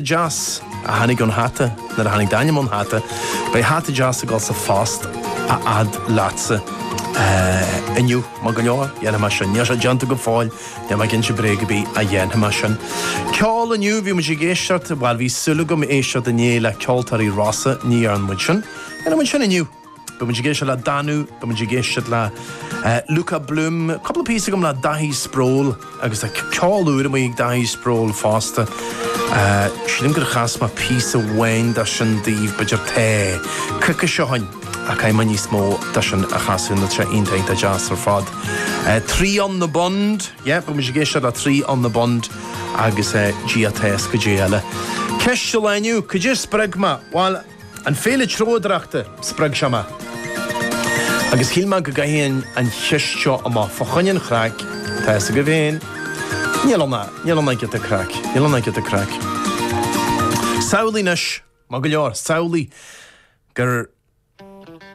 deas a tháinig ón hata, nuair a tháinig d'ainm ón hata, beidh hata deas ag dul sa phost a fhad leatsa. Inniu, maith go leor, dhéanfaidh mé sin. Níl sé déanta go fóill, níl mé ag inse bréag ar bith, ach dhéanfaidh mé sin. Ceol inniu, bhí muid ag éisteacht, bhuel bhí súil agam éisteacht inné le ceoltóirí Rossa, ní dhearna muid sin. Dhéanfaidh muid sin inniu. Beidh muid ag éisteacht le Danú, beidh muid ag éisteacht le Luka Bloom, cúpla píosa agam le Daithí Sproule agus tá ceol úr amuigh ag Daithí Sproule fosta. Sílim gur chas mé píosa amháin de sin daoibh, b'fhéidir tá coicís ó shin, ach caithfidh mé níos mó de sin a chasadh, nó tá sé iontach deas ar fad. Three on the Bund, yeah, beidh muid ag éisteacht le Three on the Bund agus ag Dia atá a fhios cad é eile. Ceist an lae inniu, Cad é a spreag mé? Bhuel. An Féile Treabhdóireachta, spreag seo mé agus shíl mé go gcaithfinn an cheist seo amach fá choinne an chraic, tá fhios agaibh féin, níl ann ach, níl ann ach giota craic, níl ann ach giota craic. Samhlaigh anois, maith go leor, samhlaigh gur.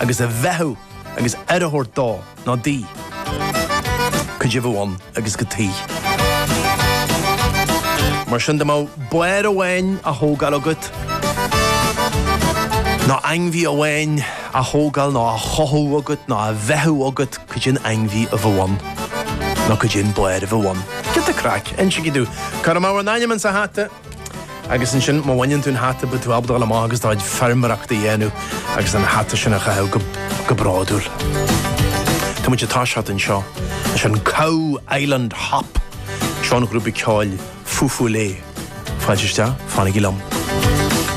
agus a bheathú agus aire a thabhairt dó ná di, cad é a bheadh ann agus cad chuige. Mar sin dá mbeadh barr amháin á thógáil agat, ná ainmhí amháin á thógáil ná á chothú agat ná á bheathú agat, cad é an ainmhí a bheadh ann ná cad é an barr a bheadh ann. Giota craic, insígí domh. Cuirfidh mé bhur n-ainm insa hata. Agus ansin, má bhaineann tú an hata, beidh tú ábalta dul amach agus do chuid feirmeoireachta a dhéanamh agus an hata sin a chaitheamh go bródúil. Tá muid ag toiseacht anseo leis an Cow Island Hop seo ón ghrúpa ceoil Feufollet. Fáilte isteach, fanaigí liom.